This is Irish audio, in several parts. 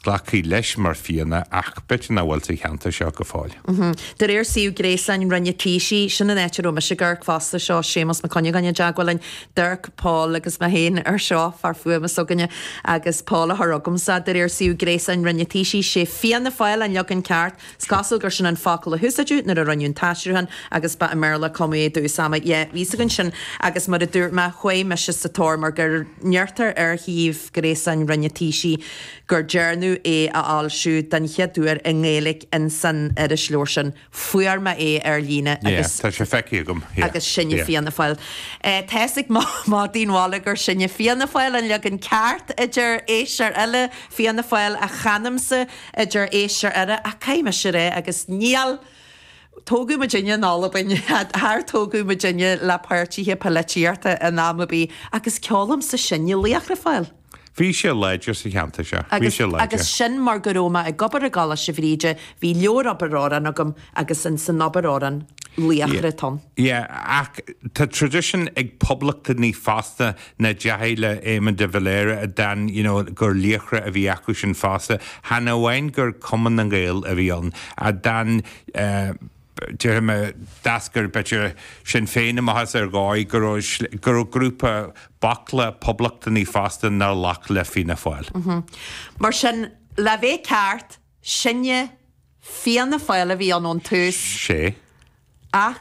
Glacfaí leis mar Fianna ach b'fhéidir nach bhfuil sa cheantar seo go fóill. De réir suíomh gréasáin Roinn an Taoisigh, sin an áit a raibh mise ag amharc fosta, seo Séamus Mac Cuinneagáin i dteagmháil linn, Dirk, Paul agus mé féin ar seo, fear fuaime s'againne agus Paul a thug agamsa. De réir suíomh gréasáin Roinn an Taoisigh, sé Fianna Fáil an leagan ceart. Is cosúil gur sin an focal a úsáideadh nuair a rinneadh an t-aistriúchán agus ba i mBéarla Come away do Usama ye bhíos againn sin agus mar a dúirt mé chuaigh mise sa tóir mar go ndeirtear ar shuíomh gréasáin Roinn an Taoisigh go ndearnadh é a fhoilsiú den chéad uair i nGaeilg insan irisleabhar sin. Fuair mé é ar líne agus. Tá sé feicthe agam, yeah, yeah. Sinne Fianna Fáil. Tá sé ag maíomh dom i mbealach gur Sinne Fianna Fáil an leagan ceart a deir sé, ar feadh a shaoil Fianna Fáil a chanamsa, a deir sé, ariamh ach caithfidh mise a rá agus níor tógadh muid inne in am ar bith, char tógadh muidinne le páirtithe poilitíochta in am ar bith agus ceolaim sa sinne Laochra Fáil. Bhí sé láidir sa cheantar seo. Bhí sé láidir. Agus sin mar go raibh mé ag obair i gColáiste Bhríde, bhí leabhar obair amhrán agam agus in san obair amhrán Laochra atá ann. Yeah, ach tá tradition ag poblachtánaigh fosta nach dteachaidh le Éamon de Valera a d'fhan you know gur laochra a bhí acu sin fosta chan amháin gur Cumann na nGael a bhí ann a d'fhan eh déarfaidh mé d'eascair b'fhéidir Sinn Féin amach as ar dhóigh go raibh go raibh grúpa baicle poblachtanaigh fosta nár ghlac le Fianna Fáil. Mm-hm. Mar sin le bheith ceart sinne Fianna Fáil a bhí ann ón tús. 'Sé. Ach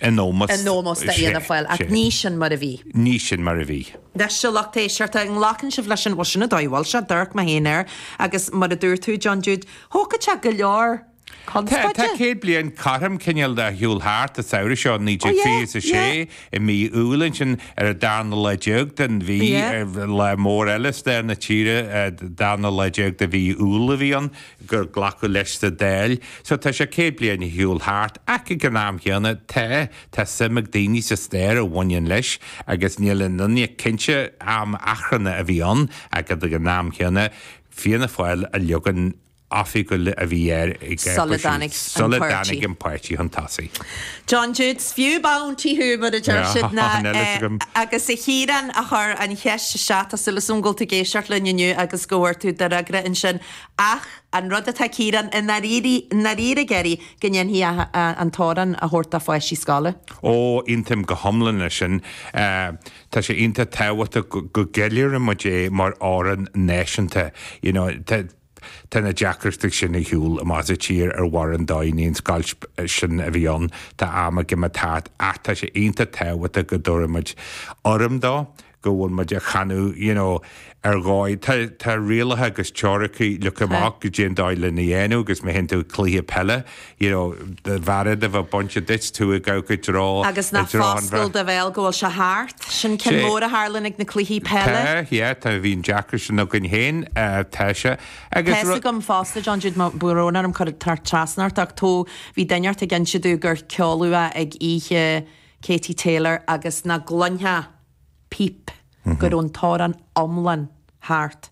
in ómós do Fhianna Fáil, ach ní sin mar a bhí. Ní sin mar a bhí. Anois, a lucht éisteachta, an nglacann sibh leis an, bhuel, sin an dóigh a bhfuil sé, d'amharc mé féin air, agus mar a dúirt tú, John Jude, thógfadh sé go leor conspóide. Tá céad bliain cothrom cineál de ar shiúl thart an samhradh seo, naoi déag fiche is a sé, i mí Iúil ansin, ar an darna lá déag den mhí, lá mór eile i stair na tíre, darna lá déag de mhí Iúil a bhí ann. gur glacadh leis sa Dáil, so tá sé 100 bliain ar shiúl thart, ach ag an am chéanna, tá, tá suim ag daoine sa stair a bhaineann leis agus níl aon duine cinnte, am achrannach a bhí ann ach ag an am chéanna, Fianna Fáil an leagan oifigiúil a bhí air ag, sula dtáinig an páirtí, sula dtáinig an páirtí chun tosaigh. John Jude, is fiú punt thú, mar a deir siad ná eh, agus a Chiaráin a chuir an cheist isteach, tá súil againn go bhfuil tú ag éisteacht linn inniu agus go bhfuair tú d'fhreagra ansin. Ach an rud atá Ciarán i ndáiríre ag iarraidh go ndéanfaí an t-amhrán a thabhairt do pháistí scoile. Ó, aontaím go hiomlán leis sin. Tá sé iontach tábhachtach go gceiliúrann muid é mar amhrán náisiúnta. You know, tá na deacrachtaí sin ar shiúl, achan tír ar dhroim an domhain, an scoilt sin a bhí ann, tá am ag imeacht thart ach tá sé iontach tábhachtach go dtabharfaimid urraim dó. go bhfuil muid á chanadh, you know, ar dhóigh. Tá, tá rialacha agus treoracha leagtha amach goidé an dóigh lena dhéanamh agus má théann tú cluiche peile, you know, do bhearád a bheith bainte duit, tú ag amharc i dtreo, i dtreo an bhrait. Agus ná foscail do bhéal go bhfuil sé thart. Sin ceann mór a tharlaíonn ag na cluichí peile. Tá, yeah, tá, bhí an deacracht sin againn féin, tá sé. Agus tá a fhios agam fosta, John Jude, tá brón orm cur trasna ort, ach tó, bhí duine inteacht ag inse domh gur ceoladh é ag oíche Katie Taylor agus nach gcluinfeá píp go raibh an t-amhrán iomlán thart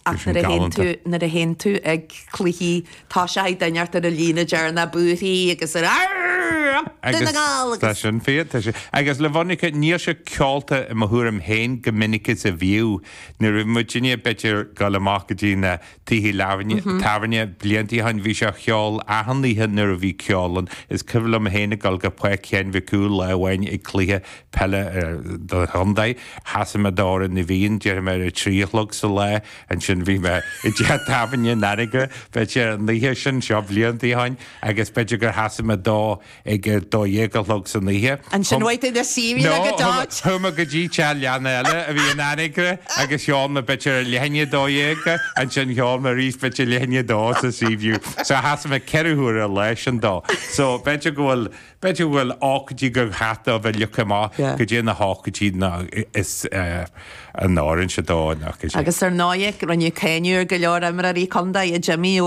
ach nuair a théann tú, nuair a théann tú ag cluichí toiseachaidh duine inteacht ar an líne deireanach ag búirfí agus ar Arr, up Dún na nGall agus. Tá sin fíor, tá sin. Agus le bheith ionraic, níl sé ceolta i mo thuairim féin chomh minic is a bhíodh. Nuair a bhí muidinne b'fhéidir dul amach go dtí na Tithe tábhairne blianta ó shin bhí sé á cheol achan oíche nuair a bhí ceol ann. Is cuimhin liom féin ag dul go Páirc Sheáin Mhic Cumhaill lá amháin ag cluiche peile don chontae. Sheasaigh mé d'Amhrán na bhFiann, déarfaidh mé ar a trí a chlog sa lá, ansin bhí mé i dteach tábhairne in Anagaire, b'fhéidir ar an oíche sin, seo blianta ó shin, agus b'fhéidir gur sheasaigh mé dó ag a dó dhéag a chlog san oíche. Ansin chuaigh tú chun an Seaview ag a dó. Chuaigh mé go dtí teach leanna eile a bhí in Anagaire agus cheol mé b'fhéidir ag leath i ndiaidh a dó dhéag, ansin cheol mé arís b'fhéidir ag leath i ndiaidh a dó sa Seaview. So sheasaigh mé ceithre huaire an lá sin dó. So b'fhéidir go bhfuil, b'fhéidir go bhfuil ócáidí go gcaithfidh sé a bheith leagtha amach goidé na hócáidí is a n-oireann sé dó. Agus ar ndóigh rinneadh cáineadh ar go leor imreoirí contae, a Jimí, ó.